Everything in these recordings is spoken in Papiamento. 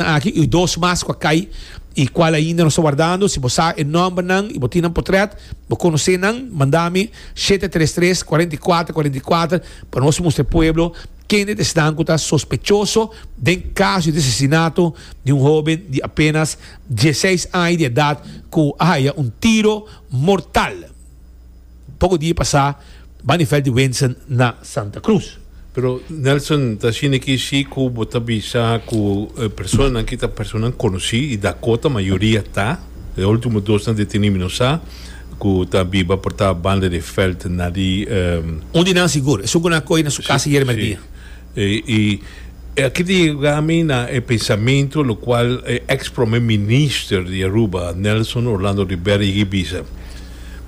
Nan aki y dos mas cu a cay y cual ainda nos ta wardando, si bo sa e nombernan y bo tin nan potret, bo conoce nan, manda mi shete tres tres cuarenta y cuatro cuarenta y cuatro pa nos mustra e pueblo kende ta esnan cu ta sospechoso den caso di asesinato di un hoben di apenas dieseis aña di edad cu a haya un tiro mortal. Poco dia pasa bani fel di Wensen na Santa Cruz. Pero Nelson ta shini ki shi cu bo ta bisa cu personanan ki ta personanan conoci y Dakota mayoria ta. E ultimo dosnan deteni mi no sa cu ta biba por ta banda di Veld na di. Un di nan sigur, esun cu nan a coge na su casa yerberdia. Y e aki ta yega mi na e pensamentu lo cual e ex Promer Minister di Aruba, Nelson Orlando Rivera yegi bisa,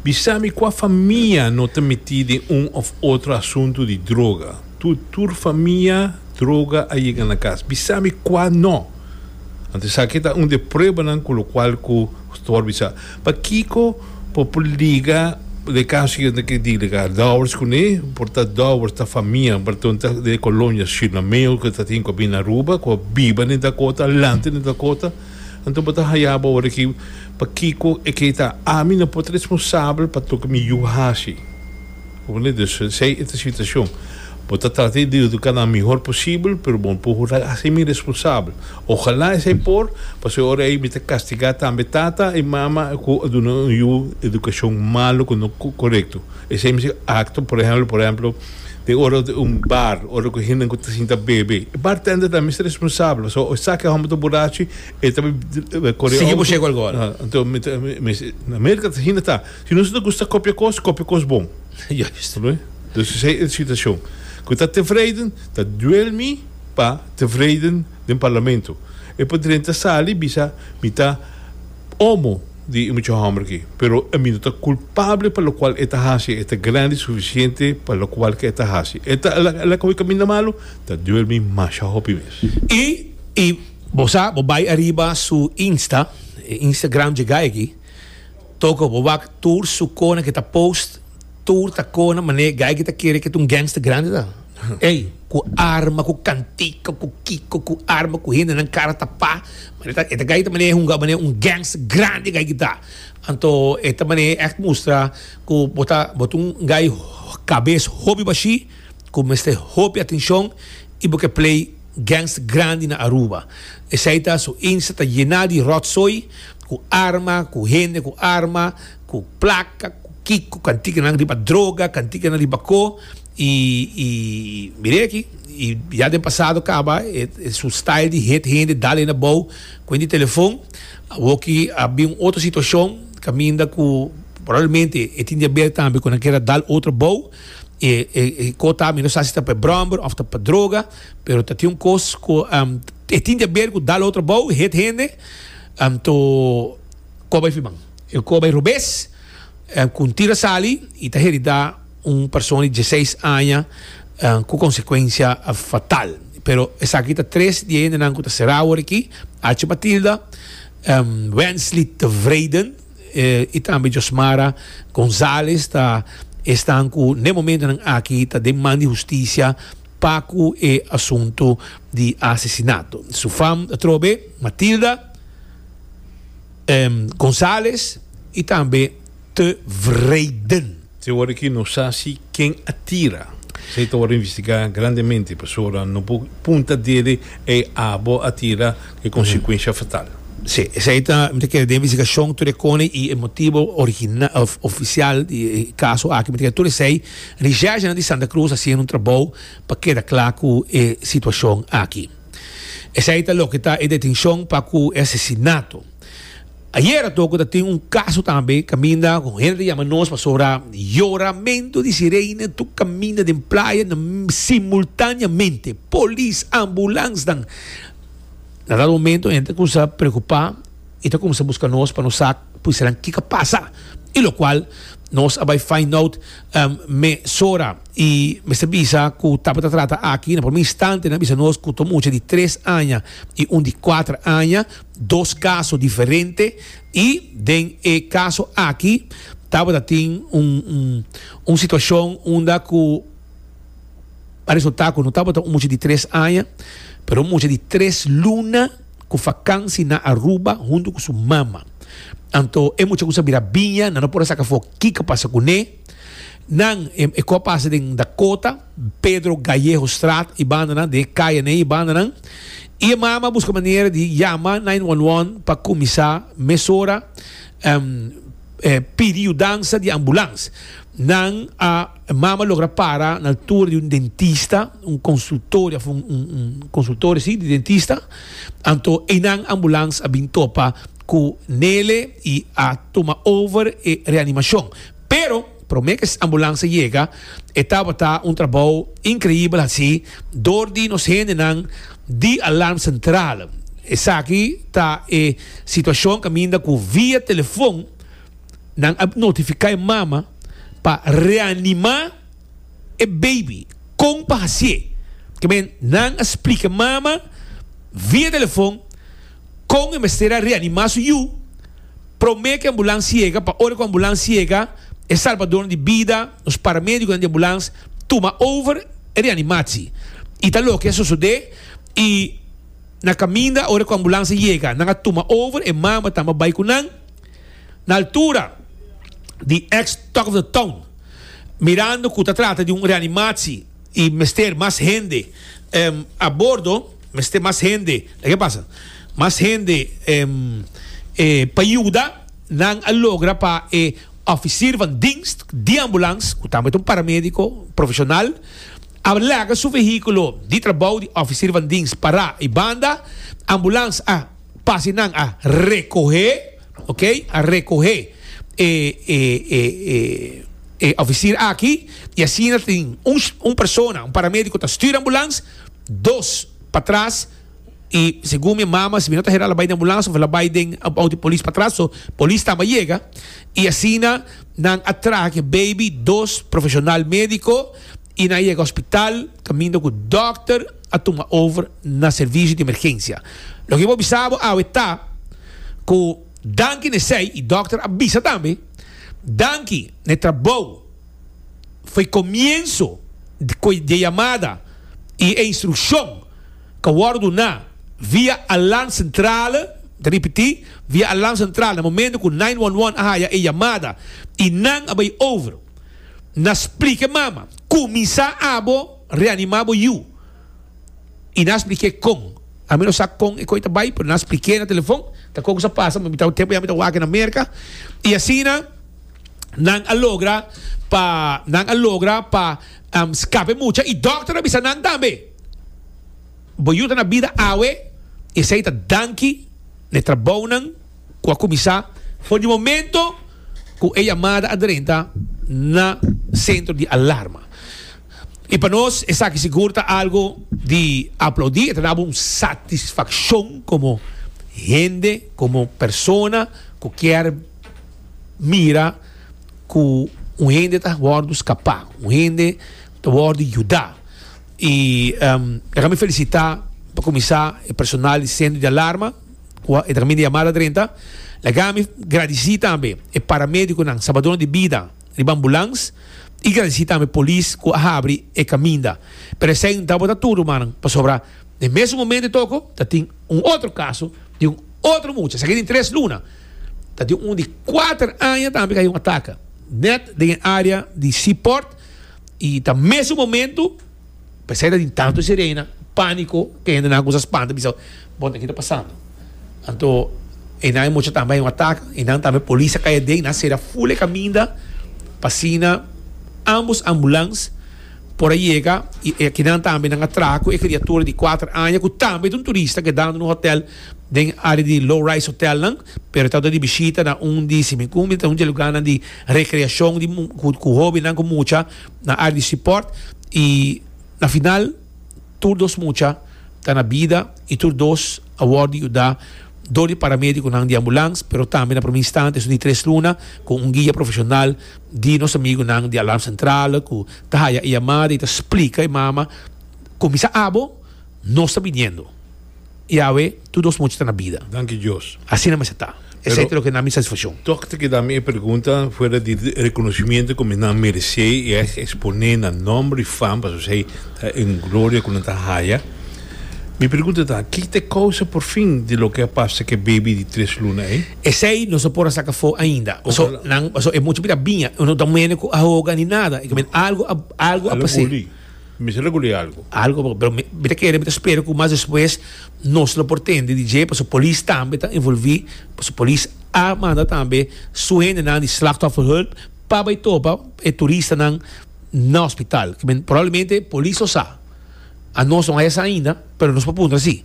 Bisa mi cua famia no ta meti den un of otro asuntu di droga? Tu tur famia droga a yega na cas. Bisa mi cua no? Anto esaki ta un de pruebanan cu lo cual cu Stor bisa. Pakiko por puliga de caso y enta ki diliga dowers cune? Por ta dowers ta famia berton ta de colonia Shilameo cu ta tin cu a bini na Aruba cu a biba den Dakota a lanta den Dakota enton bo ta hayaba ora aki pakiko e key ta ami no por ta responsabel pa toki mi yu haci. Oke, dus si ey e ta situashon, bo ta trata di eduká nan mihor posibel, pero bo no por hurá di hasi mi responsabel. Ojalá esei por, pasobra e ora ei mi ta kastigá tambe tata i mama ku a duna un yu edukashon malu ku no korekto. Esei mester akto, por ehèmpel, por ehèmpel, den ora un bar, ora ku hende ku ta sinta bebe, e bartender tambe mester responsabel, pasobra esaki hòmber ta burachi, e ta koré outo. Sigui bo shego algu ora. Anto, mi ta, mi ta, Mirka, asina ta. Si nos ta gusta kopia kos, kopia kos bon. Juist. Lo e? Dus esei e situashon. Ku ta tevreiden, ta duel mi pa tevreiden den parlamento. E padren ta sali bisa, Mi ta omo di e mucha hòmber aki, pero e mi no ta kulpable pa lokual e ta hasi. E ta grandi sufisiente pa lokual ke e ta hasi. E ta el a kohe kaminda malu, ta duel mi masha hopi mes. I i bo sa, bo bai ariba su Insta, e Instagram djigay aki. Toco, bo wak tur su cona ke ta post, tur ta cona mane guy ke ta kere ke ta un gangster grande ta. Ey, cu arma, cu cantica, cu kico, cu arma, cu hende nan cara tapa, mane ta, e ta guy ta mane hunga mane un gangster grande guy ke ta. Anto e ta mane echt mustra cu bo ta, bo ta un guy cabes hopi baschi. cu mester hopi atencion y bo ke play gangs grandi na Aruba. Esey ta, su Insta ta yena di rotzooi cu arma, cu hende cu arma, cu placa, cu kiko, cantikenan riba droga, cantikenan riba ko, y, y mir'e aki, y ya den pasado caba e, e su style di hit hende, dal hende abou cu hende di telefon. Awoki a bin un otro situacion caminda cu probablemente e tin diabetes tambe cu nan kier a dal otro abou. E e e kota mi no sa si ta pa e bromber of ta pa droga pero ta tin un kos ku e tin di aber ku dal otro bou hit hende anto kor bai fiman e kor bai robes ku un tira sali i ta herida un persona di dieseis aña ku konsekuensia fatal pero esaki ta tres di e hendenan ku ta sera awor aki Achi Matilda Wensley Tevreden y tambe Josmara Gonzalez ta esnan cu n'e momentonan aki ta den man di husticia pa cu e asunto di asesinato. Su fam atrobe Matilda Gonzalez y tambe Tevreden. Te ora ki nos sa si ken a tira, esei ta ora investigá grandemente, pasobra no por punta dede, Ei, abo a tira, ku e konsekuensia fatal. Sí, esei ta, mi ta kere den investigashon tur e kone i e motibo original òf ofisial di e kaso aki, mi ta kere tur esei Richègenan di Santa Krus a hasiendo un trabou pa keda kla ku e situashon aki. Esei ta loke ta e detenshon pa ku e asesinato. Ayera toco ta tin un caso tambe caminda cu hende ta yama nos pasobra yoramento di sirene tur caminda den playa na simultaneamente polis ambulance nan na dado momento hende ta cuminsa preocupa y ta cuminsa busca nos pa nos sa precisanan kico a pasa y lo cual nos a bay find out mesora y mester bisa cu tapo ta trata aki na primer instantenan a bisa nos cu ta un mucha di tres aña y un di cuatro aña. dos kaso diferente i den e kaso aki tabata tin un un situashon unda ku a resultá ku no tabata un mucha di tres aña pero un mucha di tres luna ku fakansi na Aruba huntu ku su mama anto e mucha ku sa bira biña nan no por a saka afó kiko a pasa kuné nan e ku a pasa den Dakota Pedro Gallego straat i bandanan den e kayanan i bandanan. I e mama a buska manera di yama nine one one pa kuminsá mesora pidi yudansa di ambulans. Nan a mama logra para na altura di un dentista, un konsultorio òf un konsultorio si di dentista, anto einan ambulans a bin topa ku Nele i a tuma over e reanimashon. Pero. Prome cu es ambulansa yega, e tabata un trabou increibel haci door di nos hendenan di Alarm Central. Esaki ta e situacion caminda cu via telefon nan a notifica e mama pa reanima e baby. Con pa haci'e? Ke men, nan a splica e mama via telefon. Kon e mester a reanimá su yu? Promé ku e ambulans yega, pa ora ku ambulans yega, e salbadónan di bida, nos paramédikonan di ambulans, tuma over e reanimatsi. I ta loke a sosodé, i na kaminda ora ku ambulans a yega, nan a tuma over, e mama tambe a bai ku nan na altura di ex Talk of the Town, mirando ku ta trata di un reanimatsi. Y mester mas hende a bordo, mester mas hende, la ke pasa? Mas hende pa yuda nan a logra pa e ofisir van dienst di ambulans, ku tambe ta un paramediko profeshonal, a laga su vehikulo di trabou di ofisir van dienst pará. I banda ambulans a pasa i nan a rekohé. Ok, a recohe e e e e e oficier aki y asina tin un un persona, un paramédico ta stuur ambulance, dos patras y segun mi mama si mi no ta hera la bay den ambulance of la bay den auto di polis patras, so polis tambe a yega y asina nan a traha ki baby dos profesional médico. Y na yega hospital caminda cu dokter a tuma over na servicio di emergencia. Loke bo bisa bo awe ta cu danki n'esey, y dokter a bisa tambe, danki n'e trabou fo'i comienzo d'e yamada y e instruccion ca wordo duna via alarm centrale, ta ripiti, via alarm centrale, na momento cu nine one one a haya e yamada y nan a bay over. Nas plike mama, kuminsá abo reanimá bo yu. I nas plik'é kon. Ami no sa kon e koi ta bai, pero nas plik'é na telefon, ta kon ku sa pasa, mi ta tempu ya mi ta wak na Merka. I asina nan a logra pa, nan a logra pa skap'é mucha. I dòkter a bisa nan tambe, Bo yu ta na bida awe, esei ta danki na e trabounan. ku a kuminsá for di momento ku e yamada a drenta na sentro di alarma. I pa nos esaki sigur ta algu di aplaudí, e ta daba un satisfakshon komo hende, komo persona ku kier mira ku un hende ta wòrdu skapá, un hende ta wòrdu yudá. I e ka mi felisitá pa kuminsá e personal di sentro di alarma. Kua e ta kaminda yamada drenta. Laga mi gradisí tambe e paramédikonan, salbadónan di bida riba ambulans i gradisí tambe polis ku a habri e kaminda. Pero esei no ta bota tur, rumannan, pasobra den mesun momentu toko ta tin un otro kaso di un otro mucha. Esaki den tres luna ta tin un di kuater aña tambe ku a haña un ataka nèt den e área di Seaport i ta mesun momentu. Pa esei tin tantu sirena, panico, ke hende nan a cuminsa spanta bisa, bon aki ta pasando. Anto e nan e mucha tambe a yin un atak y nan tambe polis a caya den y nan a cera ful e caminda pa asina ambos ambulans por a yega y aki nan tambe nan a traha cu e criatura di cuater aña cu tambe ta un turista kedando na un hotel den area di low rise hotel nan pero e ta dor di bishita na un di si me cu mi ta un di e lugarnan di recreacion di cu hobennan cu mucha. na área di sipòrt i na final tur dos mucha ta na bida i tur dos a wòrdu yuda dor di paramédikonan di ambulans pero tambe na promé instante esun di tres luna ku un guia profeshonal di nos amigunan di Alarm Centrale ku ta haya e yamada i ta splika e mama, Kuminsá abo nos ta biniendo. Yahweh, tur nos mucha ta na bida. Danki Dios. Asina mester ta. Esei ta loke na mi satisfaccion. Tok ta keda mi e pregunta fuera di reconocimiento cu mi nan merece y ex expone nan nomber y fama pasobra esei ta un gloria cu nan ta haya. Mi pregunta ta, ki ta e causa porfin di loke a pasa cu e baby di tres luna ei? Esei nos no por a saca afo ainda. Paso nan, paso e mucha bida biña. Nos no ta mene cu a hoga ni nada. Algo a, algo a pas'é. Mi ta regul'é algu. Algu papá, pero mi mi ta kere, mi ta spera ku mas despues nos lo por tende di dje, pasobra polis tambe ta envolví, pasobra polis a manda tambe su hendenan di slachtofferhulp pa bai topa e turistanan na hospital. Probablemente polis lo sa, a nos no haya sa ainda, pero nos por puntra sí.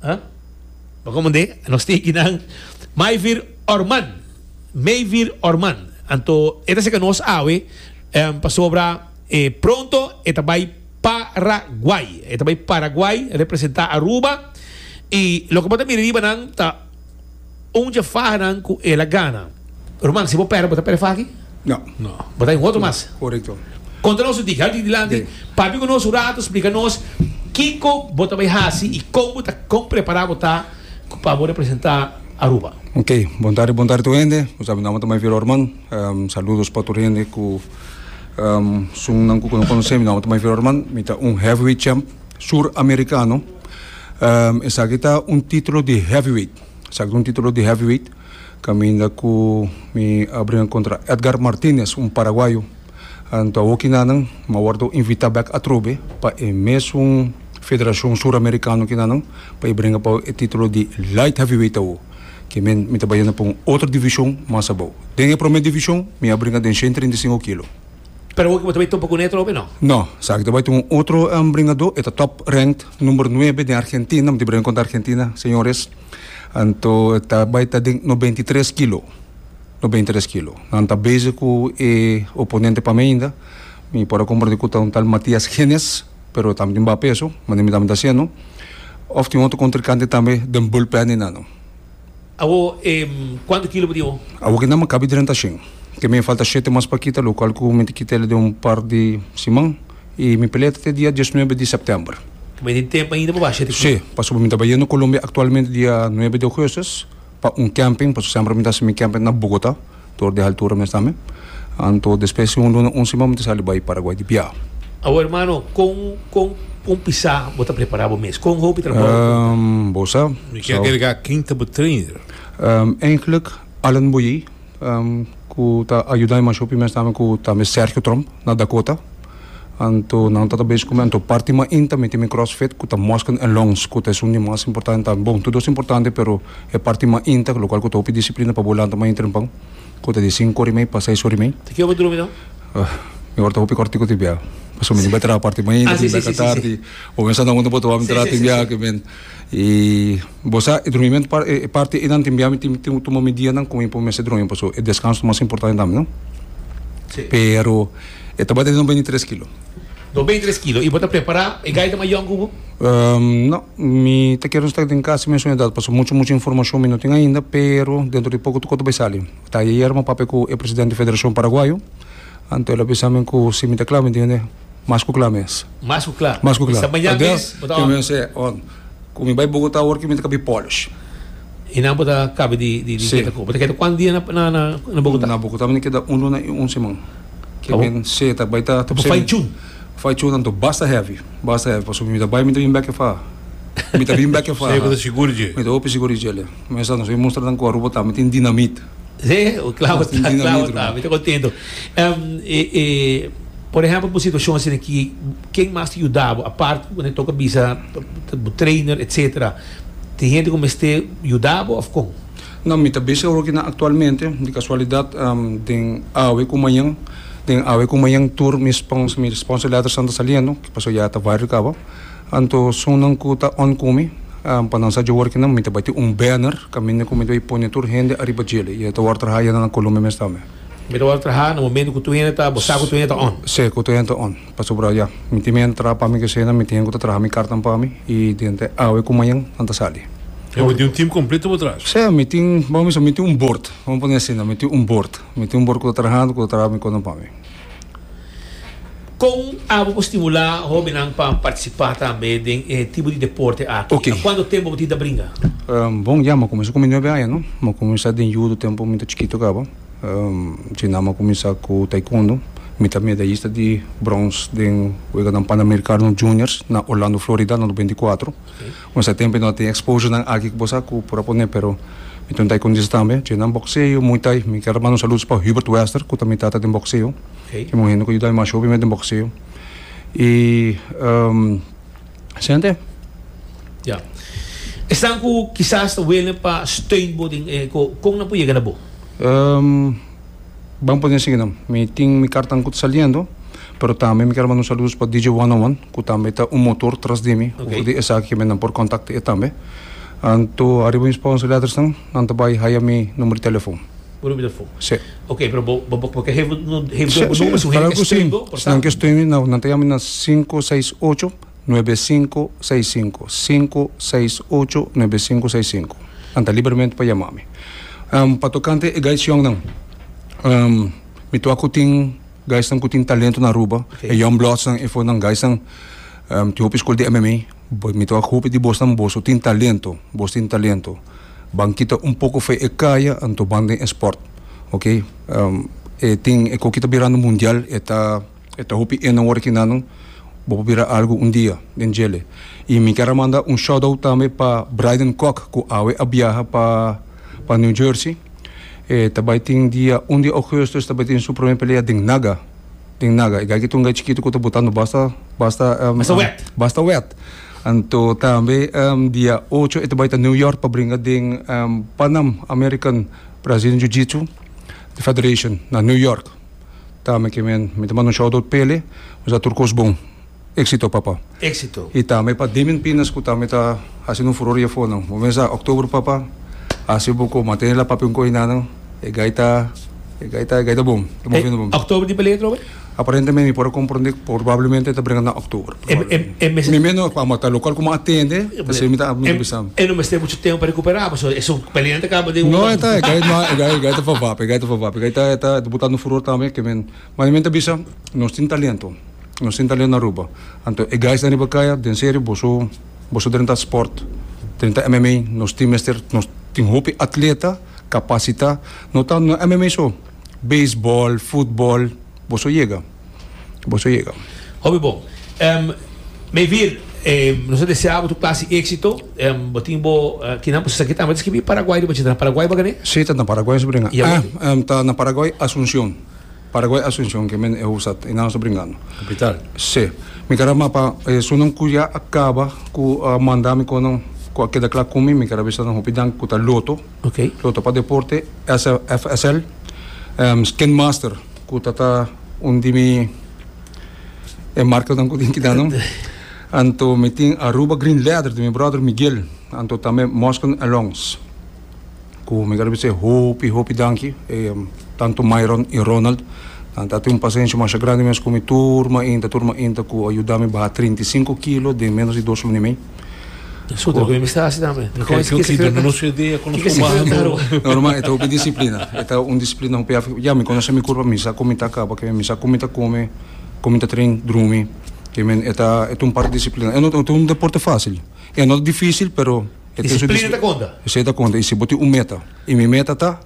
Huh? Pa como de nos tiki nan mai vir orman, mei vir orman. Anto e ta seca nos awe em, pasobra e pronto e ta bai Paraguay. E ta bai Paraguay representa Aruba y loke bo ta mira riba nan ta Un dje faha nan ku el a gana. Ruman, si bo pèrdè, bo ta pèrdè faha aki? No. No. Bo ta den otro mas. Korekto. Konta nos su digi. Hal di dilanti, papia ku nos un ratu, splika nos kiko bo ta bai hasi i kon bo ta kon prepará bo ta pa bo representá Aruba. Ok. Bon tarde, bon tarde tur hende. Bo sabi, mi nòmber ta Maivelo Arman. Saludos pa tur hende ku sungunan ku no konosé. Mi nòmber ta Maivelo Arman. Mi ta un heavyweight champ, sur-amerikano. Um, esaki ta un titulo di heavyweight. Esaki ta un titulo di heavyweight. Caminda cu mi a bringa contra Edgar Martinez, un paraguayo. Anto a hoki nanan, mi a wordo invita bek atrobe pa e mesun federacion suramericano aki nanan, pa e bringa pa e titulo di light heavyweight awo. Ke men, mi ta bayona pa un otro division mas abao. Den e prome division, mi a bringa den shen trinta i sinku kilo. Pero hopi bo ta bai topa ku Netro, hopi no? No, sa ki ta bai ta un otro um, bringadó, e ta top ranked number nuebe den Argentina, mi ta bringa kontra Argentina, señores, anto e ta bai ta den nobenta i tres kilo, nobenta i tres kilo. Nan ta bezig ku e oponente pa mi ainda, mi por a komprende ku ta un tal Matias Genes, pero e tambe tin baha peso, manera mi tambe ta hasiendo, òf tin otro kontrinkante tambe den bulpen di nan. Awo e cuanto kilo bo tin awo? Awo kenda mi cabi drenta shen. Te mi a falta shete mas pa kita, lo cual cu mi ta kita el den un par di siman. Y mi pelea ta te dia diesnuebe di september. Mi tin tempo ainda pa basha te kilo? Sí, pasobra mi ta bayendo Colombia actualmente dia nuebe di augustus pa un camping, pasobra semper mi ta haci mi camping na Bogota. Tor di haltura mes tambe. Anto despues di un luna, un siman mi ta sali bai Paraguay di biaha. Awo hermano, con con con pisa bo ta prepara bo mes? Con hopi trabao bo ta bota? Um, bo sa. Mi kier agregar kin ta bo trainer? Um, eigenlijk Allen Boyer, um, cu ta ayuda mi mas hopi mes tambe cu tambe Sergio Tromp na Dakota. Anto nan ta ta bes come anto parti ma in ta miti mi crossfit cu ta muscle en lungs cu ta esun di mas importante tambe. Bon, todos importante pero e parti ma in ta locual cu ta hopi disciplina pa bo lanta maña trempan cu ta di cinco ora y mei pa seis ora y mei. Te kio bo drumi dan? Mi ora ta hopi cortico tin bia pasobra mi no bai traha parti ma in ta tin bia ka tardi o mi a sa nan unda bo ta wak mi traha tin bia aki men. I bo sa e drumi mento e parti einan tin biami tin tin tuma medianan ku mi por mester drumi paso e deskanso ta mas importante tambe no pero e tabata di dos beinti tres kilo. Dos beinti tres kilo i bo ta prepara e gaita mayòn ku bo? No mi ta kere sta den kas mesun edat paso muchu muchu informashon mi no tin ainda pero dentro di poko toko ta bai sali ta ayer ayer mi a papia ku e presidente di federashon paraguayo anto el a bisa mi ku si mi ta kla mi dijo. Mas ku kla mes. Mas ku kla. Mas ku kla. Esta mañan mes bo ta on. Ku mi bai Bogotá awor mi ta kabi polish. I nan bo ta kabi di keda ku. Bo ta keda kuantu dia na Bogotá? Na Bogotá mi ta keda un luna i un siman. Ke men si e ta bai ta. Bo fai chun? Fai chun anto basta hevi. Basta hevi pasobra mi ta bai mi ta bin bek e fa. Mi ta bin bek e fa. Mi ta hopi sigur di djele. Mester nos bai mustra nan ku Aruba ta. Mi tin dinamit. Sí, claro ta, claro ta. Mi ta contento. Um, e, e, por ejemplo, por situación así aquí, ¿quién más te ayudaba? Aparte, cuando toca visa, trainer, etcétera. ¿Te gente como este ayudaba o con? No, mi ta busy ahora que na actualmente, de casualidad, um, den awe con mañana, den awe con mañana tour, mi sponsor, mi sponsor letters están saliendo, que pasó ya ta viral cabo. Anto sunnan ku ta onkumi pa nan sa djaworki nan mi ta bati un banner kaminda ku mi ta bai pone tur hende ariba djele i e ta wòrdu traha yanda na Colombia mes tambe. Mi ta wòrdu traha na momentu ku tur hende ta bo sa ku tur hende ta on. Se ku tur hende ta on pasobra ya mi tin mi hende ta traha pa mi kese nan mi tin hende ku ta traha mi kartan pa mi i dente awe ku mañan nan ta sali. Bo tin un tim kompleto bo tras. Se mi tin bo miso mi tin un bord bo pone asina mi tin un bord mi tin un bord ku ta trahando ku ta traha mi kosnan pa mi. Kon abo por stimulá hóbennan pa partisipá tambe den e tipo di deporte aki? Ok. Na kuantu tempu bo tin ta bringa? Bon, ya, mi a kuminsá ku mi nuebe aña, no. Mi a kuminsá den yudo tempu mi ta chikitu kaba. Asina mi a kuminsá ku taikondo. Mi ta medayista di brons den weganan panamerikano juniors na Orlando, Florida, na nobenta i kuatro. Nos a tempe no a tin exposurenan aki ku bo sa ku por a pone pero mi ta un taekundista tambe, dje nan bokseo, muay thai. Mi ker manda un saludos pa Hubert Wester ku ta mi tata den bokseo. Kimin un hende ku a yuda mi masho bimen den bokseo. I esente. Ya. Esnan ku kisas ta wene pa steun bo den e kon nan por yega na bo? Bon pone asina nan mi tin mi kartan ku ta saliendo pero tambe mi ker manda un saludos pa DJ one on one ku tambe ta un motor tras di mi for di esaki ke mi andan por kontakta e tambe anto ariba mi sponsor letters nan nan ta bai haya mi number di telefon. Bo number di telefon si oke pero bo bo bo ker heve heve bo number si nan ke stui mi nan ta yama mi na sinku seis ocho. Nuebe sinku seis sinku sinku seis ocho nuebe sinku seis sinku nan ta liberemente pa yama mi pa tokante e gaicionnan mi tua cu tin gaisnan cu tin talento na Aruba e Young Bloods nan efo nan gaisnan tin hopi school di MMA mi tua cu hopi di bosnan boso tin talento boso tin talento ban kita un poco fe e caya anto ban den e sport ok e tin e coki ta birando mundial e ta E ta hopi ena worde ki nano bo por bira algo un dia den djele. Y mi kier a manda un shout out tambe pa Bryden Kok cu awe a biaha pa pa New Jersey. E ta bay tin dia un di Augusto e ta bay tin su prome pelea den Naga den Naga. E gay ki ta un gay chikito cu ta botando basta basta basta wet. Anto tambe dia ocho e ta bay ta New York pa bringa den Panam American Brazilian Jiu Jitsu Federation na New York. Ta me ke men mi ta manda un shout out pele nos a tur kos bon exito papa exito y tambe pa Demian Pinas cu tambe ta haciendo un furor afor nan bo mes a october papa haci bo cu mantene la papia un coy na nan e gai ta e gai ta e gai ta bon ta moviendo bon october di palet Robert aparentemente mi por a comprende probablemente ta brenga na october. E mester. Mi meno cu amo ta local cu mo a tende, pasobra mi ta amo ta bisa. E no mester mucho tempo pa recuperá, pasobra e son pelea nan ta caba den un. No e ta, e gai no, e gai, e gai ta for wapen, e gai ta for wapen, e gai ta, e ta, e ta bota no furor tambe ke men, ma e men ta bisa nos tin talento, nos tin talento na Aruba, anto e gais den riba caya den serio boso, boso drenta sport, drenta MMA, nos tin mester, nos tin hopi atleta capacita, no tan, no MMA so, baseball, football, boso yega. Bo so yega. Hopi bon. Mi vir, nos ta desea bo tur clase di exito. Bo tin bo kinan bo saki tambe ta skibi Paraguay riba dje. Ta na Paraguay bo kende? Si, ta na Paraguay nos ta bringa. Y awe? Ta na Paraguay Asuncion. Paraguay Asuncion ke men e hoofdstad. Einan nos ta bringando. Capital. Si. Mi kara mapa esunnan ku ya a kaba ku a manda mi kon nan ku a keda kla ku mi. Mi kara bisa nan hopi danki ku ta Lotto. Lotto pa deporte, SFSL, Skin Master. Cu ta ta un di mi e marcanan cu tin kita no. Anto mi tin Aruba Green Leather di mi brother Miguel. Anto tambe Mosken Alongs. Cu mi garbi se hopi hopi danki. E tanto Myron y Ronald. Nan ta tin un pasenshi masha grandi mes cu mi turma inta turma inta cu a yuda mi baha trinta y sinku kilo den menos di dos luna y mei. Escola. Kiko mester hasi tambe? Kiko significa rua? Normal, e ta hopi disiplina. E ta un disiplina hopi afecta. Ya, mi conoce mi curpa, mi sa con mi ta caba, mi sa con mi ta come, con mi ta train, drumi. Ke men, e ta un parti di disiplina. E no ta un deporte facil. E no ta dificil, pero e tin su disiplina. Disiplina ta conta? Si, e ta conta. Y si bo tin un meta. Y mi meta ta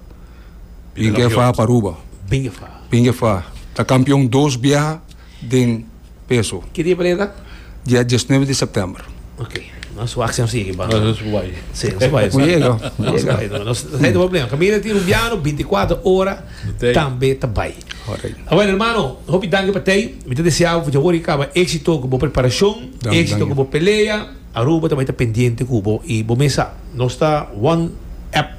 binga e faha pa Aruba. Binga e faha. Binga e faha. Ta campeon dos biaha. den peso. Ki dia pareha ta? Dia diesnuebe di sèptèmber. Ok. Nos wak si nos yegi pa. Nos bai. Si, nos bai. Bo yega. Bo yega. Nos ta haña problema. Kaminda tin rumbiano binti kuater ora tambe ta bai. Korek. Awèn hermano, hopi danki pa tei. Mi ta deseabu pa djawoor i kaba éksito ku bo preparashon, éksito ku bo pelea. Aruba ta bai ta pendiente ku bo i bo mes sa nos ta one app.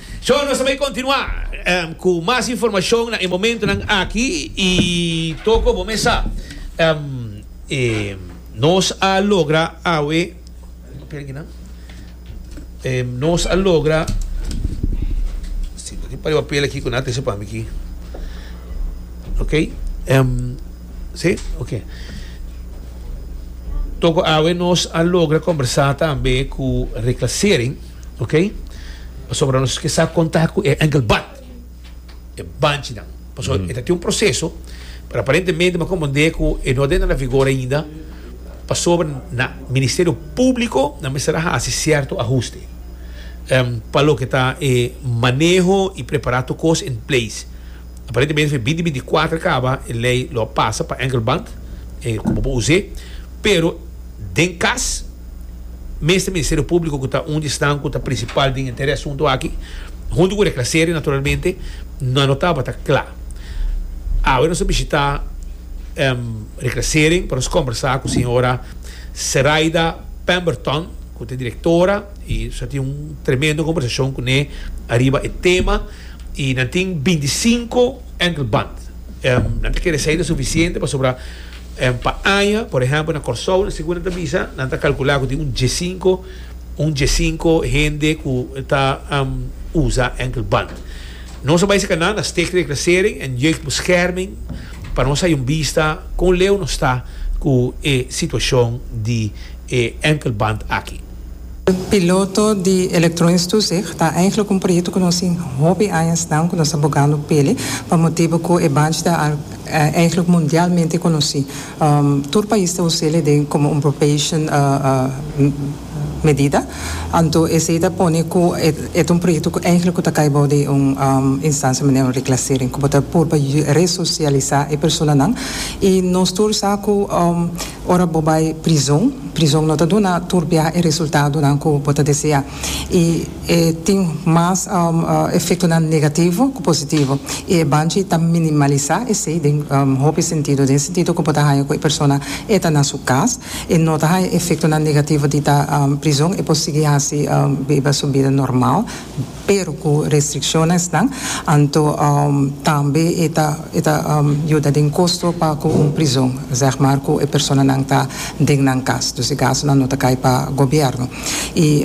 So nos ta bay continua cu mas informacion na e momentonan aki y toca cu bo mesa e nos a logra awe nos a logra tin un par di papel aki cu nan a trece pa mi aki ok si ok toca awe nos a logra conversa tambe cu Rick Lassering. ok pasobra nos ke sa konta ku e engelbad e banchinan paso e ta tin un proseso pero aparentemente me komprende ku e no den a vigor ainda pasobra na ministerio publico nan mester a hasi sierto ahuste pa loke ta e maneho i prepara tur kos in place aparentemente for binti binti kuater kaba e lei lo a pasa pa engelband e kupo por us'é pero Den cas, mester Ministerio Publico cu ta un di esnan cu ta principal den e entera e asunto aki, hunto cu Reclaseria naturalmente, nan no tabata cla. Awe nos a bishita Reclasering pa nos combersa cu señora Seraida Pemberton cu ta e directora y nos a tin un tremendo combersacion cu ne ariba e tema y nan tin binticinco enkelband. Nan ta kere esey ta suficiente pasobra. En pa aña, por ehempel na Kòrsou, na segun nan ta bisa, nan ta kalkulá ku tin un diesinko, un diesinko hende ku ta usa enkelband. Nos a bai saka nan na Sticht Reclassering en Jeugdbescherming pa nos hay un bista kon leu nos ta ku e situashon di e enkelband aki. Piloto di Elektronisch zu Zich ta eigenlijk un proyekto ku nos tin hopi añasnan ku nos ta bogando pele pa motibu ku e banchi ta eigenlijk mundialmente konosí. Tur pais ta us'el den komo un probation medida. Anto esei ta pone ku e ta un proyekto ku eigenlijk ku ta kai bou di un instansia manera un reklasering ku bo ta purba resosialisá e personanan i nos tur sa ku Ora bo bai prizon, prizon no ta duna tur biaha e resultadonan ku bo ta desea i e tin mas efektonan negativo ku positivo. I e banchi ta minimalisá esei den hopi sentido, den sentido ku bo ta haña ku e persona e ta na su kas, e no ta haña efektonan negativo di ta prizon, e por sigui hasi biba su bida normal. pero cu restriccionesnan, anto tambe e ta e ta yuda den costo pa cu un prizon, zeg maar, cu e personanan ta den nan cas, dus e gastonan no ta cay pa gobierno. Y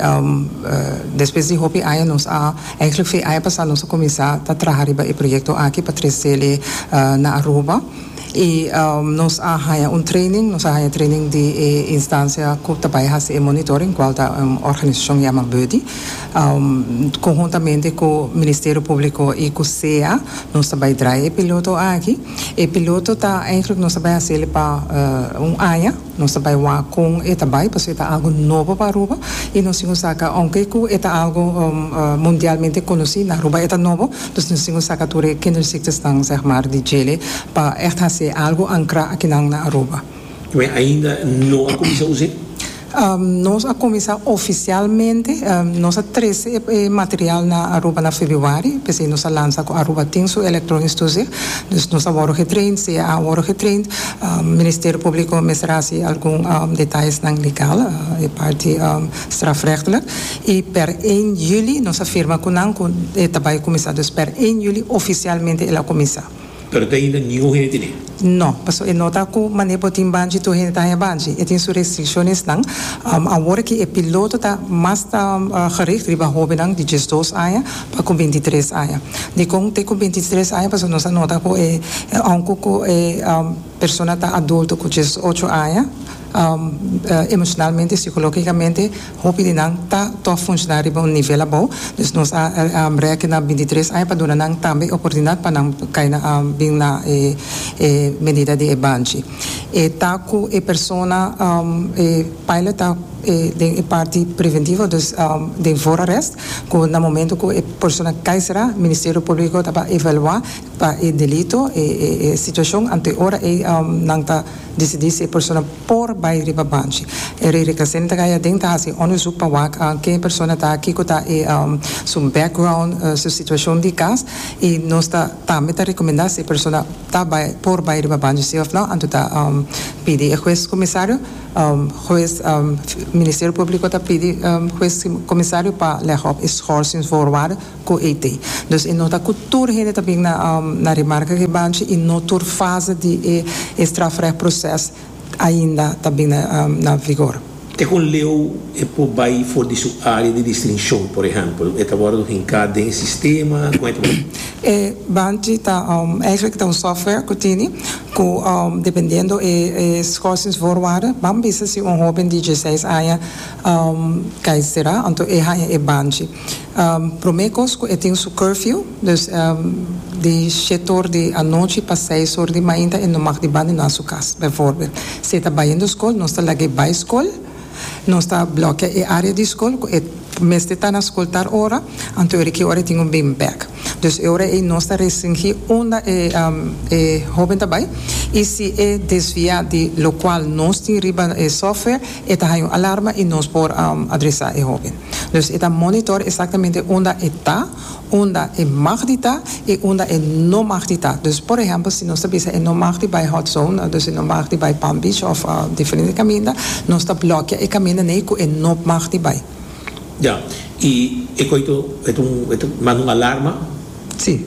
despues di hopi aña nos a, eigenlijk f'e aña pasa nos a cuminsa ta traha riba e proyecto aki pa trecele na Aruba y nos a haña un training, nos a haña training di e instancia cu ta bay haci e monitoring, cual ta un organisacion yama Buddy. Conhuntamente cu Ministerio Publico y cu sea nos ta bay draai e piloto aki. E piloto ta eigenlijk nos ta bay hacele pa un aña. Nos ta bay wak con e ta bay pasobra e ta algo nobo pa Aruba y nos tin cu saca aunke cu e ta algo mundialmente conoci na Aruba e ta nobo dus nos tin cu saca tur e kinderziektersnan zeg maar di djele pa echt hace algo ancra akinan na Aruba. Mi ainda no a cuminsa usa e. Nos a kuminsá ofisialmente, nos a trese e material na Aruba na febrüari, p'esei nos a lansa ku Aruba tin su elektronisch toezicht, dus nos a wòrdu getraind, sea a wòrdu getraind, Ministerio Públiko mester hasi algun detallesnan legal, e parti strafrechtelijk, i pèr én juli nos a firma ku nan ku e ta bai kuminsá, dus pèr én juli ofisialmente el a kuminsá. Pero ta hinda ningun hende tene. No, paso e nota cu mane bo tin banchi tur hende ta haña banchi. E tin su restriccionesnan. Awor aki e piloto ta mas ta gericht riba hobennan di diesdos aña pa cu bintitres aña. Dicon te cu bintitres aña paso nos a nota cu e aunque cu e persona ta adulto cu diesocho aña, emocionalmente, psicologicamente, Hopi di nan ta tòg funshoná riba un nivel abou, dus nos a rèkte na bintitres aña pa duna nan tambe e oportunidat pa nan kai na bin na e e medida di e banchi. E ta ku e persona e pilot ta den e parti preventivo, dus den voorarrest, ku na momento ku e persona kai será, Ministerio Públiko ta pa evaluá pa e delito e e situashon, anto e ora ei nan ta. Disidí si e persona por bai riba banchi. E rei rica sin ta gaya aden ta haci onderzoek pa wak ke e persona ta, kico ta e su background, su situacion di cas, y nos ta tambe ta recomenda si e persona ta bai, por bai riba banchi si of no, anto ta pidi e huez comisario, huez, Ministerio Publico ta pidi huez comisario pa leg op e schorsing voorwaarden. cu ete. Dus e no ta cu tur hende ta bin na na remarca cu e banchi y no tur fase di e e strafrecht proces ainda ta bin na na vigor. Te con leu e por bay for di su area di distincion, por ehempel, e ta wordo hinca den e sistema, con e ta wordo. E banchi ta eigenlijk ta un software cu tini cu dependiendo e e schorsingsvoorwaarden ban bisa si un hoben di diesseis aña cai sera anto e haña e banchi. Prome kos ku e tin su curfew, dus di shet or di anochi pa seis or di mainta e no mag di bandona su kas. Bèforbèl, si e ta bayendo skol, nos ta laga e bai skol, nos ta blòkia e área di skol ku e mester ta na skol tal ora, anto e ora ki ora e tin un bin bèk. Dus e ora ei nos ta restringí unda e e hóben ta bai i si e desviá di lokual nos tin riba e software, e ta haña un alarma i nos por adresá e hóben. Dus e ta monitor exactamente unda e ta, unda e mag di ta y unda e no mag di ta. Dus por ehempel si nos ta bisa e no mag di bay hot zone, dus e no mag di bay Palm Beach of diferente caminda, nos ta blokia e caminda n'ey cu e no mag di bay. Ya, y e coito e ta manda un alarma. Si,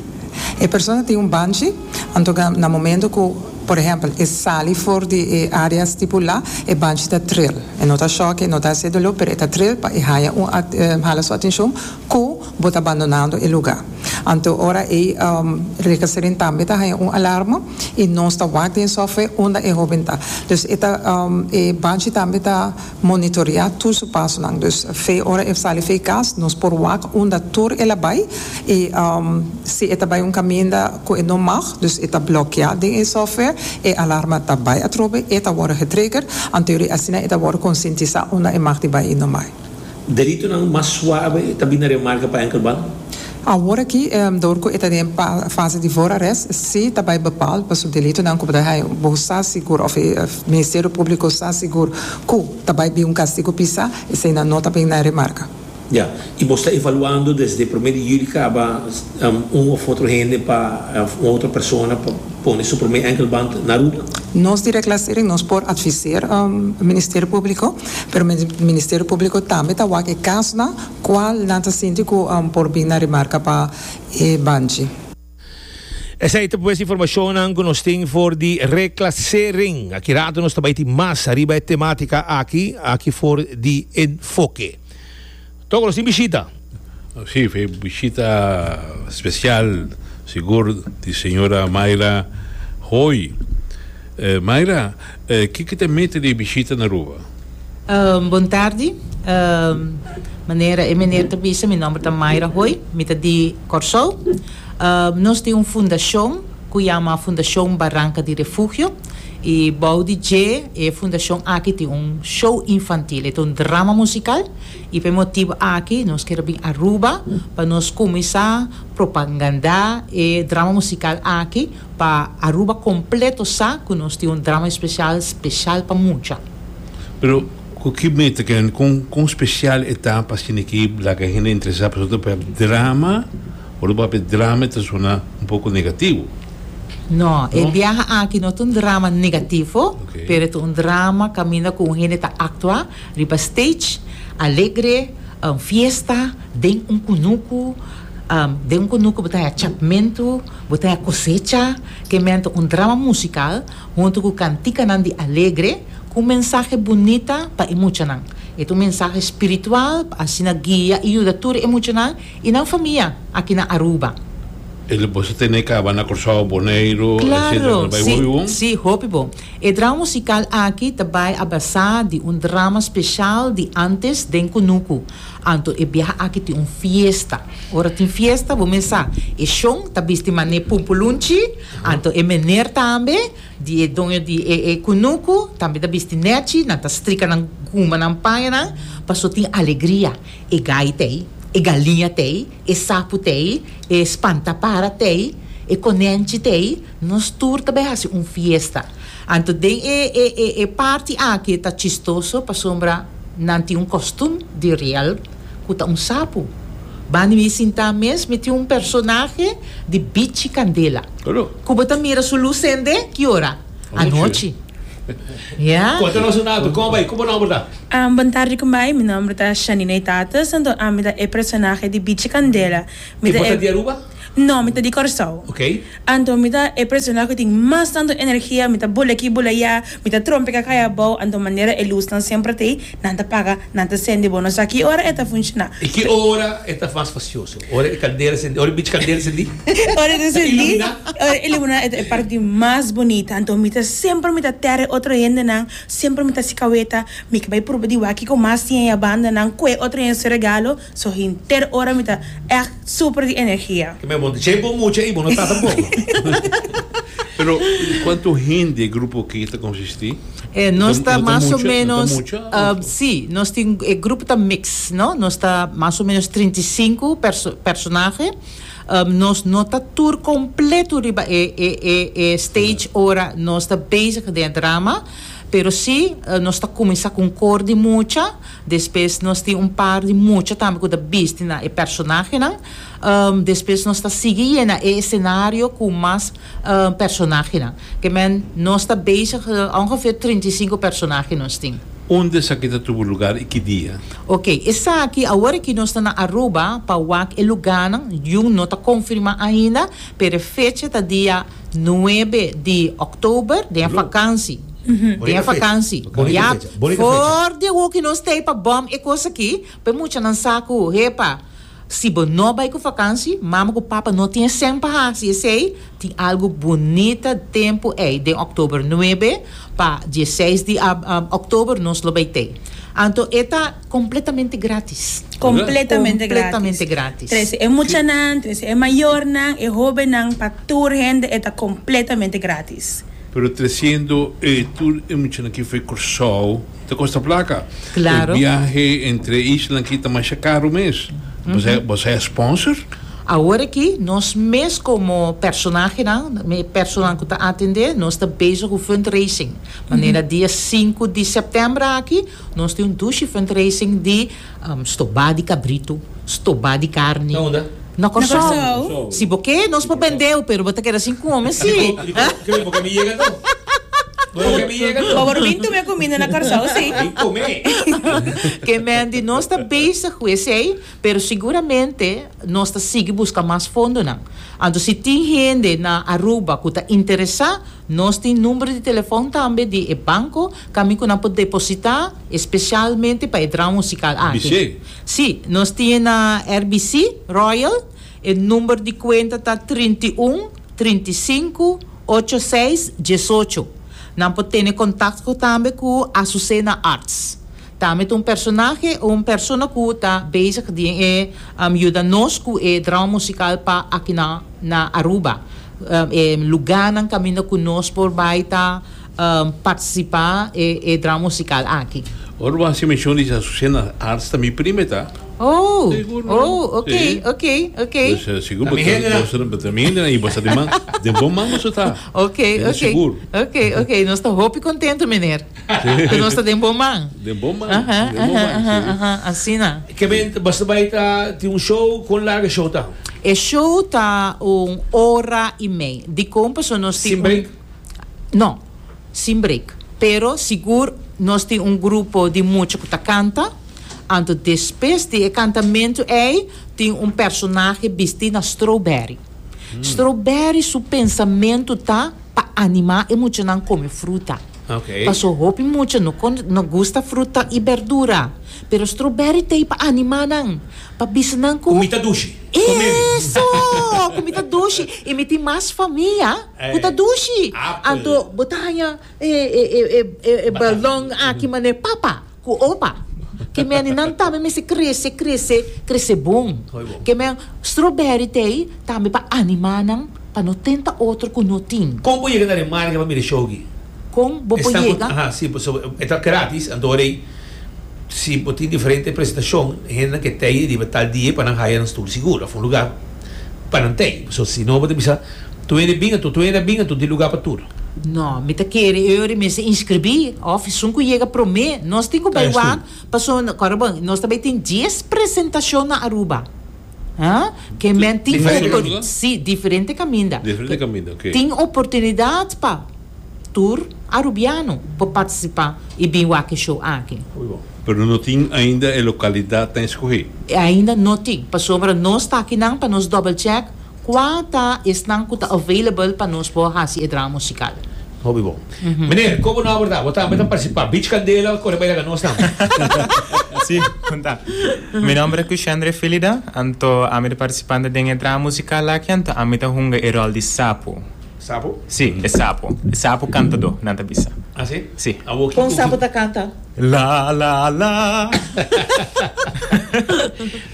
e persona tin un banchi, anto ke na momento ku, por ehèmpel, e sali for di e área stipulá, e banchi ta tril. E no ta shòk, e no ta hasié doló, pero e ta tril pa e haña un at, hala su atenshon ku bo ta bandonando e lugá. Anto ora ei, Recaserin tambe ta haña un alarma i nos ta wak den software unda e hóben ta. Dus e ta, e banchi tambe ta. Monitorea tur su pasonan. Dus fe ora e sali fe kas nos por wak unda tur el a bai i si e ta bai un kaminda ku e no mag, dus e ta blokeá den e software, e alarma ta bai atrobe, e ta wòrdu getrigger, anteori asina e ta wòrdu konsientisá unda e mag di bai i no bai. Delitunan mas suabe ta bini na remarka pa enkelman. Awor aki, dor cu e ta den fase di voorarrest, si ta bay bepaal pa su delitonan cu bo ta haya, bo sa sigur, of e Ministerio Publico sa sigur cu ta bay bin un castigo pisa, eseinan no ta bin na remarca. Ya, y bo sta evaluando desde prome di juli caba un of otro hende pa, of un otro persona pa pone su prome enkelband na ruta? Nos di Reclassering nos por adviseer Ministerio Publico, pero Ministerio Publico tambe ta wak e casonan Cual nan ta sinti cu por bin na remarca pa e banchi? Esei ta pues informacionnan cu nos tin for di reclasering. Aki rato nos ta bay tin mas ariba e tematica aki, aki for di enfoke. Toco nos tin bishita. Si, e bishita special sigur di señora Mayra Hoy. Mayra, kiko ta e meta di e bishita na Aruba? Bon tardi. Manera e meneer ta bisa, mi nomber ta Mayra Hoy, mi ta di Kòrsou. Nos tin un fundashon ku yama Fundashon Baranka di Refugio i bou di dje e fundashon aki tin un show infantil, e ta un drama musikal i pa e motibu aki nos kere bin Aruba pa nos kuminsá propangandá e drama musikal aki. Pa Aruba completo sa cu nos tin un drama especial special pa mucha. Pero cu ki meta ke hende, con con special e ta pa asina ki laga hende interesa pasobra ta papia drama, ora bo papia drama e ta sona un poco negativo. No, e biaha aki no ta un drama negativo, pero e ta un drama caminda cu un hende ta actua riba stage, alegre, un fiesta. Den un kunuku, den un kunuku bo ta haña chapmentu, bo ta haña kosecha, ke mènta un drama musikal huntu ku kantikanan di alegre ku un mensahe bunita pa e muchanan. E ta un mensahe spiritual pa asina guia i yuda tur e muchanan i nan famia aki na Aruba. E lo por tene kaba na Kòrsou, Boneiru, etsetera, ta bai hopi bon? Sí, hopi bon. E drama musikal aki ta bai a basá di un drama speshal di ántes den kunuku. Anto e biaha aki tin un fiesta. Ora tin fiesta, bo mes sa, e shon ta bisti mané pumpulunchi, anto e mener tambe di e doño di e e kunuku tambe ta bisti nèchi, nan ta strika nan guma, nan paña nan, paso tin alegria. E gai t'ei, e galiña t'ei, e sapu t'ei, e spantapara t'ei, e konènchi t'ei, nos tur ta bai hasi un fiesta. Anto den e e e e parti aki ta chistoso pasobra nan tin un kostum di riel ku ta un sapu. Bani mi sintá mes mi tin un personahe di bichi kandela Alo. ku bo ta mira su lus sendé ki ora? Anochi. Anochi. Ya. Konta nos un akto. Kòm bai? Ku bo nòmber ta? Am, Bon tardi kum bai? Mi nòmber ta Shanina Itates. Anto ami ta e personahe di bichi kandela. Mi I ta bo ta e. di Aruba? No, mi ta di Kòrsou. Okay. Anto mi ta e persona ku tin mas tantu energia, mi ta bula aki bula ya, mi ta trompe ka kai abou, anto manera e lusnan semper ta ei, nan ta paga, nan ta sendi, bo no sa ki ora e ta funshoná. I ki ora e ta mas fasioso? Ora e kandera sendi, ora e bichi kandera sendi? Ora e ta sendi, Iluminá? ora e iluminá e ta e parti mas bonita, anto mi ta semper mi ta tera e otro hendenan, semper mi ta hasi kaweta, mi ke bai pruba di wak kiko mas tin ei a bandanan, kue otro hende su regalo. So hinter ora mi ta echt super di energia. Ke me bon che bo mucha i bo no ta tampoco. Pero cuanto hende grupo ke ta consisti? E nos ta mas o menos si nos tin e grupo ta mix no nos ta mas o menos trinta i sinku personahe nos no ta tur completo riba e e e e stage ora nos ta bezig den e drama pero si nos ta cuminsa cu un cor di mucha Despues nos tin un par di mucha tambe cu ta bisti na e personahenan. Despues nos ta sigui yena e escenario cu mas personahenan. Ke men nos ta bezig, ongeveer trinta i sinku personahe nos tin. Unda esaki ta tubu lugar y ki dia? Ok, esaki awor aki nos ta na Aruba pa wak e lugarnan, yu no ta confirma ainda, pero e fecha ta dia Nuebe di October den e fakansi. Den e fakansi. Ya for di hoki nos ta e pa bom e cos aki. P'e muchanan sa cu hepa, si bo no bay cu fakansi, mama cu papa no tin esem pa haci esey. Tin algo bunita tempo ey den October nuebe pa dieseis di October nos lo bay t'ey. Anto e ta. Completamente gratis. Completamente gratis. Completamente gratis. Trece e muchanan, trece e mayornan, e hobennan, pa tur hende e ta completamente gratis. Pero treciendo e tur e muchanan aki for Curaçao ta costa placa. Claro. E biahe entre e isla aki ta masha caro mes. Boso a hae sponsor? Awor aki nos mes como personahenan, e personan cu ta atende, nos ta bezig cu fundraising. Manera dia sinku di septembra aki Nos tin un dushi fundraising di stobá di kabritu, stobá di karni. Na Kòrsou. Si bo ke, nos por bend'eu, pero bo ta keda sin kome si. Dikon bo ke mi yega tu? Bo por bin tume kuminda na Kòrsou si. Ke men di nos ta bezig ku esei. Pero siguramente nos ta sigui buska mas fondonan. Anto si tin hende na Aruba ku ta interesá, nos tin number di telefon tambe di e banko kaminda ku nan por depositá espesialmente pa e drama musikal aki. Sí, nos tin e na RBC, Royal. E number di kuenta ta trinta i un, trinta i sinku, ocho seis diesocho. Nan por tene kontakto tambe ku Azucena Arts. Tambe ta un personahe o un persona cu ta bezig den e yuda nos cu e drama musical pa akinan na Aruba. E luganan caminda cu nos por bay ta participa e drama musical aki. Ora bo haci mencion di Azucena na arts ta mi prima e ta. Oh! Sigur. Oh, ok, ok, ok. Pues sigur bo ta bo ta mi hende nan y bo sa den bo man bo su ta. Ok, ok. Sigur. Ok, ok. Nos ta hopi contento, meneer. Cu nos ta den bon man. Den bon man. Aha, den bon man, aha, aha, aha, asina. Ke men basta bai ta tin un show? Con larga e show ta? E show ta un ora y mei. Dicon? Paso nos tin un. Sin break? No, sin break. Pero sigur nos tin un grupo di mucha cu ta canta. Anto despues di e cantamento ey tin un personahe bisti na Strawberry. Strawberry su pensamento ta pa anima e muchanan come fruta. Paso hopi mucha no con no gusta fruta y berdura, pero strawberry t'ei pa anima nan, pa bisa nan cu Comita dushi. Eso! Comita dushi y mi tin mas famia cu ta dushi. Anto bo ta haña e e e e balon aki manera papa. Ku opa. Ke meninan tambe mester krese, krese, krese bon. Ke men strawberry te ei tambe pa animá nan pa no tenta otro ku no tin. Kon bo yega na Remarca pa mira e show aki? Kon bo por yega? Aha, si, pasobra e ta grátis, anto wor ei si bo tin diferente presentashon, hendenan ke tei riba tal dia, pa nan haya nan stul sigur, af un lugá. Pa nan t'ei. So si no bo ta bisa, Tuene bin atu, tuene a bin atu, tin lugar pa tur. No, mi ta kere eu ri mester inscribi, of esun cu yega prome. Nos tin cu bay wak, paso no, kor bon, nos ta bay tin dies presentacion na Aruba. Haa, ke men tin opor, si, diferente caminda. Diferente caminda, ok. Tin oportunidad pa. Tur a Rubiano pa participa y bin wak e show aki. Pero no tin ainda e localidad ta escoge. Ainda no tin, pasobra nos ta akinan pa nos double check cua ta esnan cu ta available pa nos por haci e drama musical. Hopi bon. Meneer, como no a worda? Bo tambe ta participa. Beach Candela a corre bay laga nos tambe. Si, con ta. Mi nomber cu Shandre Filida, anto ami ta participando den e drama musical aki, anto ami ta hunga e rol di Sapo. Sapo? Sí, e sapo. E sapo kantadó, nan ta bisa. Así? Sí. Awor kiko ku. Kon sapo ta kanta? La la la.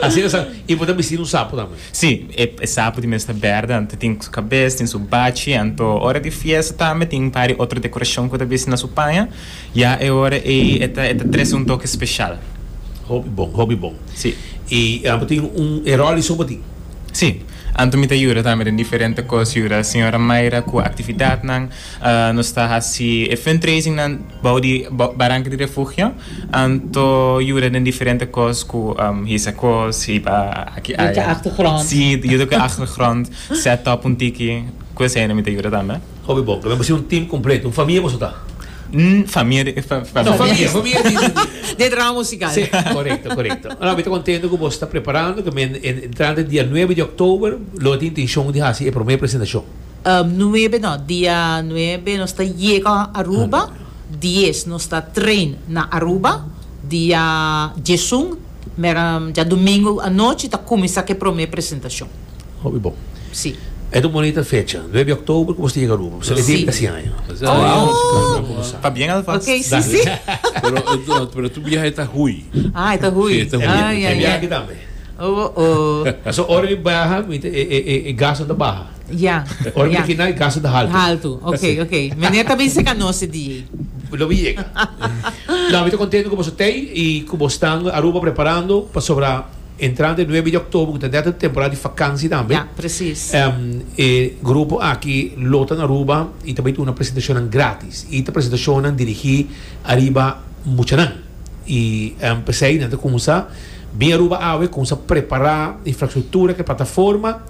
Así ta sa. I bo ta bistí di un sapo tambe? Sí, e e sapo di mes ta bèrda, anto tin su kabes, tin su bachi, anto ora di fiesta tambe tin un par di otro dekorashon ku ta bisi na su paña. Ya e ora ei e ta e ta trese un toke speshal. Hopi bon, hopi bon. Sí. I abo tin un e ròl di sopo tin? Sí, Anto mi ta yuda tambe den diferente kos, yuda señora Mayra ku aktividatnan. Nos ta hasi e fundraisingnan bou di baranka di refugio, anto yuda den diferente kos ku hisa kos, hiba aki aya. Yuda ku achtergrond. Sí, yuda ku achtergrond, set up un tiki, kuseinan mi ta yuda tambe. Hopi bon, ta bem pasia un team completo, un famia boso ta. Umm famia di e famia. No famia, famia di di. Di e drama musical. Si, correcto, correcto. No, mi ta contento cu boso ta preparando cu mi entrante dia nuebe di october lo a tin intencion di haci e prome presentacion. Umm nuebe no, dia nuebe nos ta yega Aruba, dies nos ta train na Aruba, dia diesun. Mira, dja dumingu anochi ta kuminsá ku e promé presentashon. Hopi bon. Sí. E ta un bonita fecha. Nuebi òktober ku nos ta yega Aruba. Bo sali bimpi si aña. Esatamente. Ta bien alvas. Ok, sí, sí. Pero, pero tur biahe ta hui. Ah, e ta hui. Sí, e ta hui. Ah, ya, ya. E biahe aki tambe. Oh, oh. Pasobra ora di baha, e gasnan ta baha. Ya, Ora mi ya. tin kina e casa ta haltu. Haltu, ok, Así. ok. Mene ta bay seca no se di ey. Lo mi yega. Nan mi ta contento cu boso tey y cu bo stan Aruba preparando pasobra entrante nuebe di october cu ta nèt e temporada di vakantie tambe. Ya, precies. Em, e grupo aki lo ta na Aruba y ta bay duna presentacionnan gratis. Y ta presentacionnan dirigi ariba muchanan. Y, em, p'esey nan ta cuminsa bin Aruba awe, cuminsa prepara infrastructura cu e plataforma.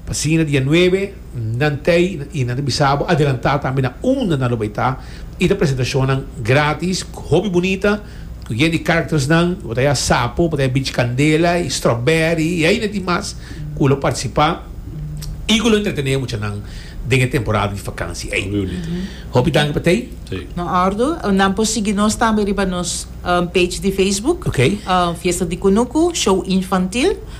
Pa sina dia nuebe nan tei y nan ta bisa bo adelanta tambe na unda nan lo bay ta y ta presentacionnan gratis hopi bunita cu yen di charactersnan bo ta ya Sapo bo ta ya Beach Candela y Strawberry y ayina tin mas cu lo participa y cu lo entretene muchanan den e temporada di vakantie ey. Hopi danki pa tei. Na ordu. Nan por sigui nos tambe riba nos page di Facebook, Fiesta di Kunuku, Show Infantil.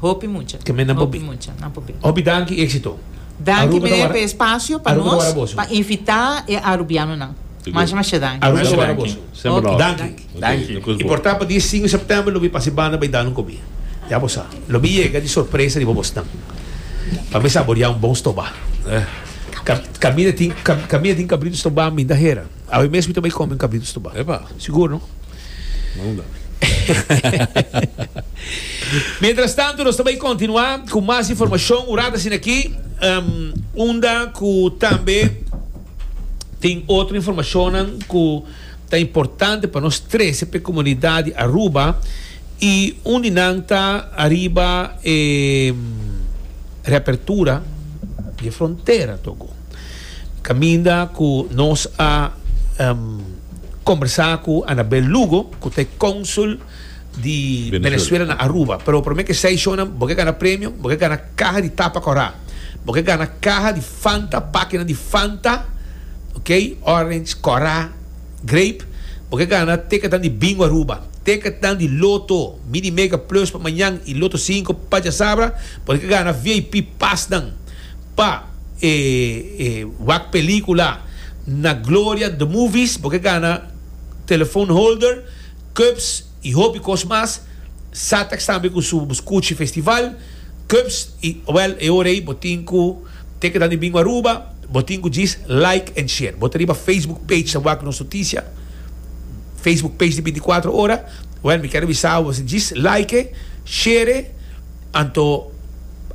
Hopi mucha. Ke men nan por bi. Hopi mucha nan por bini. Hopi danki i éksito. Danki meneer pe espasio pa nos pa invitá e arubianonan. Masha masha danki. Aruba ta wara boso. Semper nòt. Danki. Danki. Nos koes bo. Y por ta pa di e sin September lo bin pasa e banda bai danu komi. Ya bo sa. Lo bin yega di sorpresa riba bosnan. Pa mi saboriá un bon stobá. Cabrito. Caminda tin cabrito stobá minda hera. Awe mes mi ta bai komi un cabrito stobá. Epa. Sigur no. Mientras tanto nos ta bay continua cu mas informacion un rat asina aki unda cu tambe tin otro informacionnan cu ta importante pa nos trece pa e comunidad di Aruba y un di nan ta ariba e reapertura di e frontera Togo. Caminda cu nos a combersa cu Anabel Lugo, cu ta e consul di Venezuela na Aruba. Pero prome cu e seis shownan, bo ke gana premio, bo ke gana caha di tapa cora, bo ke gana caha di Fanta, pakinan di Fanta, ok, orange, cora, grape, bo ke gana ticketnan di Bingo Aruba, ticketnan di Lotto, Mini Mega Plus pa mañan y Lotto Cinco pa diasabra, bo ke gana VIP pasnan. Pa e wak pelicula na Gloria The Movies bo ke gana telephone holder, cups y hopi cos mas. Satex tambe cu su Scuchi Festival, cups y well e ora ey bo tin cu te keda di Bingo Aruba bo tin cu djis like and share. Bo ta riba Facebook page ta wak nos noticia, Facebook page di binticuatro ora. Well mi kier a bisa bo djis like e, share e. Anto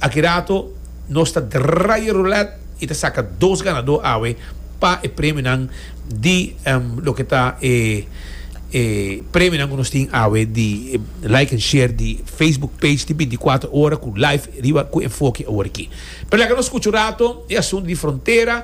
aki rato nos ta draai e roulèt i ta saka dos ganadó awe pa e premionan di loke ta e e premionan ku nos tin awe di like and share di Facebook page di binticuatro ora ku live riba ku enfoke aworiki. Pero laga nos skucha un rato e asuntu di frontera.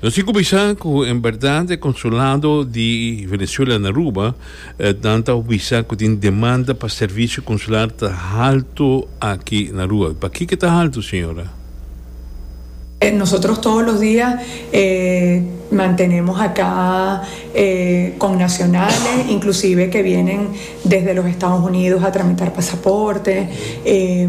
Nos tin cu bisa cu en berdad e consulado di Venezuela na Aruba nan ta bisa cu tin demanda pa servicio consular ta halto aki na Aruba. Paki ke ta halto señora? Nosotros todo los dia e mantenemos aca e connacionales inclusive ke vienen desde los Estados Unidos a tramitar pasaporte e.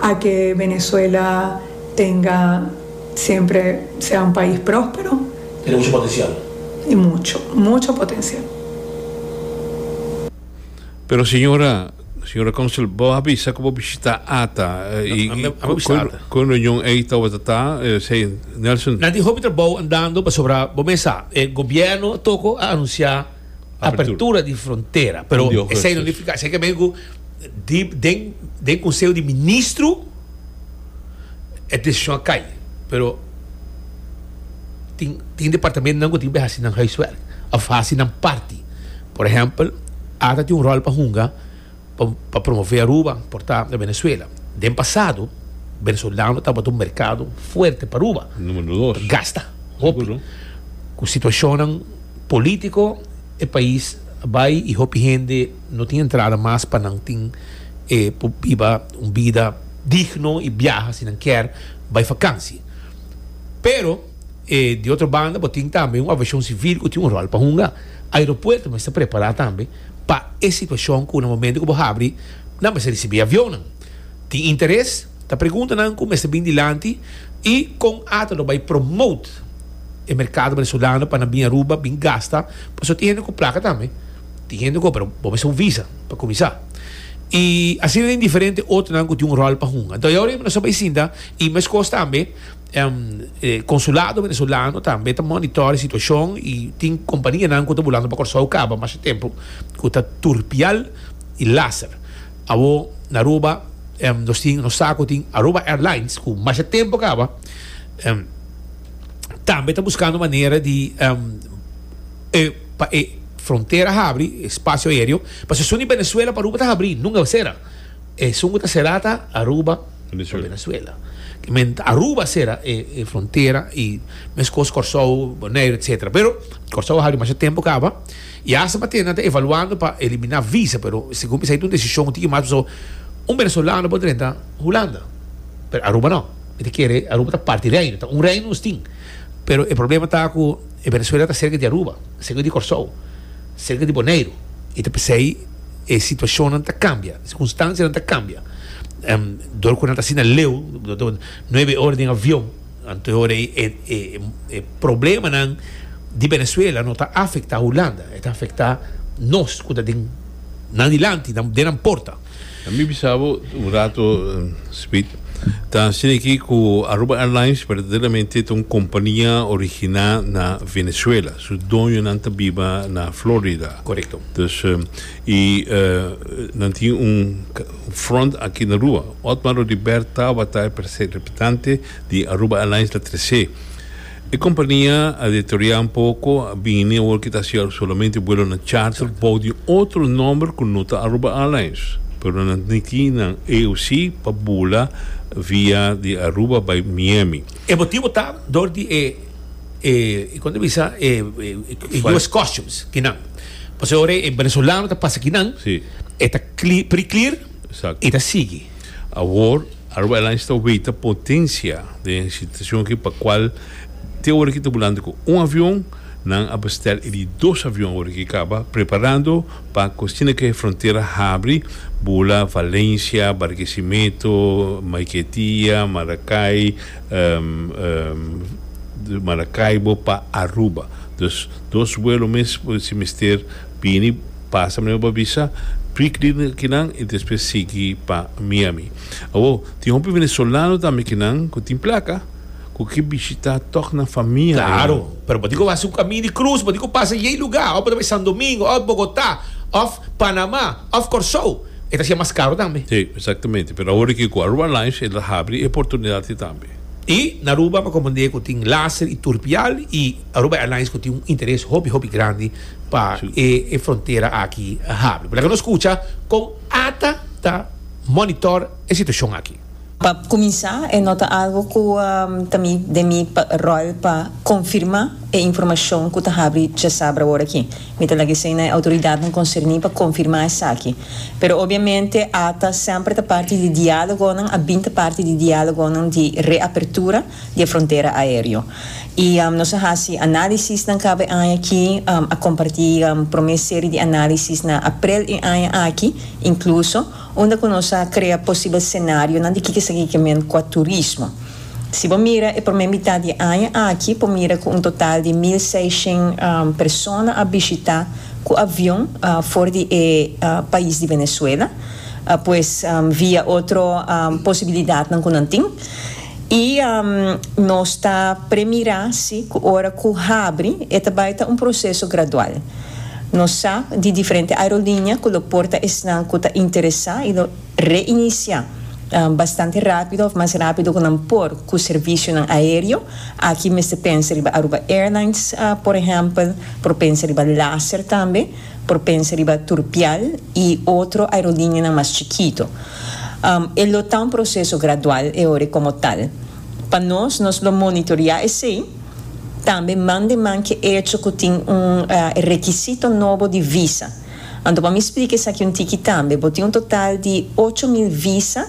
a ke Venezuela tenga siempre sea un pais prospero. Tiene mucho potencial. Y mucho, mucho potencial. Pero señora, señora Council, bo a bisa cu bo bishita ata y cu e reunion ey tawata ta, esey Nelson? Na tin hopi trabao andando pasobra bo mey sa, e gobierno toco a anuncia. apertura di frontera pero esai no nifica esai kende ku den den conseho di ministro e decision a cay pero tin tin departamento nan ku tin ki hasi nan huiswerk of hasi nan parti por ehempel ata tin un rol pa hunga pa promové Aruba por ta na Venezuela. Den pasado, venezolano tabata un merkado fuerte pa Aruba. Numero dos. Ta gasta hopi. Seguro. Ku situashonnan polítiko e pais a bai i hopi hende no tin entrada mas pa nan tin e por biba un bida digno i biaha si nan kier bai fakansi. Pero, e di otro banda bo tin tambe un aviashon sivil ku tin un ròl pa hunga. Aeropuerto mester prepará tambe. Pa e situacion cu na momento cu bo habri nan mester ricibi avionnan. Tin interes? Ta preguntanan cu mester bin dilanti y con ata lo bay promote e mercado Venezolano pa nan bin Aruba bin gasta pasobra tin hende cu placa tambe, tin hende cu pero bo mester un visa pa cuminsa. Y asina tin diferente otronan cu tin un rol pa hunga. Enton e ora y bo ta bay sinta y mescos tambe. Konsulado Venezolano tambe ta monitor e situashon i tin kompanianan ku ta bulando pa Kòrsou kaba masha tempu ku ta turpial i laser. Awor na Aruba nos tin nos sa ku tin Aruba Airlines ku masha tempu kaba tambe ta buskando manera di pa e frontera habri e spasio aereo pasobra suni Venezuela pa Aruba ta habri nunka a sera. Esun ku ta sera ta Aruba. Venezuela. Aruba sera e frontera y meskos Corsou, Bonaire etcetera pero Corsou a haal dimasha tempo caba y hasta pa tenta ta evaluando pa elimina visa pero segun mi sa ita un decision tin ki mas paso un venezolano por drenta Hulanda pero Aruba no mi ta kere Aruba ta parti di Reino ta un Reino nos tin pero e problema ta cu e Venezuela ta cerca di Aruba cerca di Corsou cerca di Bonaire y ta pesey. e situacionnan ta cambia, e circunstancianan ta cambia. Um, door cu nan ta asina leu, nueve ora den avion, anto ora e, e, e, e problemanan di Venezuela no ta afecta Hulanda, e ta afecta nos cu ta den nan di lanti, nan, den nan porta. Mi bisabo un rato, Smith, ta asina aki cu Aruba Airlines verdaderamente ta un compania origina na Venezuela, su doñonan ta biba na Florida. Correcto. Dus y nan tin un front aki na rua. Otmar Odibert tabata e presidente di Aruba Airlines la tresé. E compania a deteriorá un poco, a bini awor ki ta hacia solamente vuelonan charter bou di un otro nomber cu no ta Aruba Airlines. Pero nan tin ki nan AOC pa bula via di Aruba bai Miami. E motibo ta dor di e. e kon ta bisa e US Customs kinan. Paso e ora e venezolano ta pasa kinan, sí. e ta pre-clear i ta sigui. Awor Aruba Airlines ta weta potensia den e situacion aki pa cual te ora ki ta bulando cu un avion nan a bestel e di dos avion ora ki caba preparando pa cu asina cu e frontera habri bula Valencia, Barquisimeto, Maiquetia, Maracay, di Maracaibo pa Aruba dus dos vuelo mes por si mester bini pasa primero pa visa pri kinan y despues sigui pa Miami awo tin hopi venezolano tambe kinan cu tin placa cu ke bishita tok nan famia ayi Claro, pero bo tin cu haci un camino di cruz, bo tin cu pasa yey lugar, of bo ta bay Sandomingo, of Bogota, of Panama. Of Kòrsou, e ta siña mas karu tambe. Sí, exactamente. Pero awor di kico Aruba Lines el a habri e oportunidad ti tambe. Y na Aruba pa comende cu tin laser y turpial y Aruba Airlines cu tin un interes hopi hopi grandi pa e e frontera aki habri. Por laga nos scucha con ata ta monitor e situacion aki. Pa kuminsá, e no ta algu ku ta mi den mi ròl pa konfirmá e informashon ku ta habri djasabra awor-aki. Mi ta laga esei na e outoridatnan konserní pa konfirmá esaki. Pero obiamente ata semper ta parti di diálogonan, a bin ta parti di diálogonan di reapertura di e frontera aéreo. I nos a hasi análisisnan kab'e aña aki, a kompartí promé seri di análisis na aprel e aña aki inkluso. unda ku nos a krea posibel senarionan di kiko esaki ke men kua turismo. Si bo mira e promé mitat di aña aki por mira ku un total di mil seishent persona a bishitá ku avion for di e pais di Venezuela, pues via otro posibilidatnan ku nan tin. I nos ta premira si cu ora cu habri e ta bay ta un proceso gradual. Nos sa di diferente aerolinea cu lo porta esnan cu ta interesa y lo reinicia bastante rapido of mas rapido cu nan por cu servicionan aereo. Aki mester pensa riba Aruba Airlines, por ehempel, por pensa riba Laser tambe. Por pensa riba Turpial y otro aerolinianan mas chikito. E lo ta un proceso gradual e ora como tal. Pa nos, nos lo monitorea esey, tambe man den man ke echo cu tin un requisito nobo di visa. Anto pa mi splica esaki un tiki tambe, bo tin un total di ocho mil visa,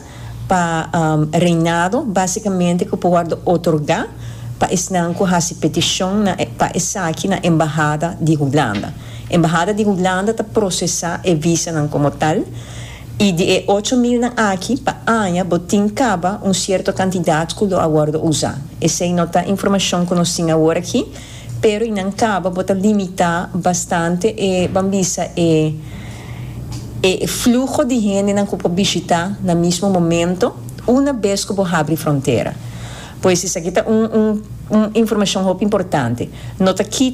pa reinado básikamente ku por wòrdu otorgá pa esnan ku hasi petishon na pa esaki na Embahada di Hulanda. Embahada di Hulanda ta prosesá e visanan komo tal, i di e ocho milnan aki pa aña bo tin kaba un sierto kantidat ku lo a wòrdu usá. Esei no ta informashon ku nos tin awor aki. Pero i nan caba bo ta limita bastante e ban bisa e e fluho di hendenan cu por bishita na mismo momento una bes cu bo habri frontera. Pues esaki ta un un informacion hopi importante. No ta kita.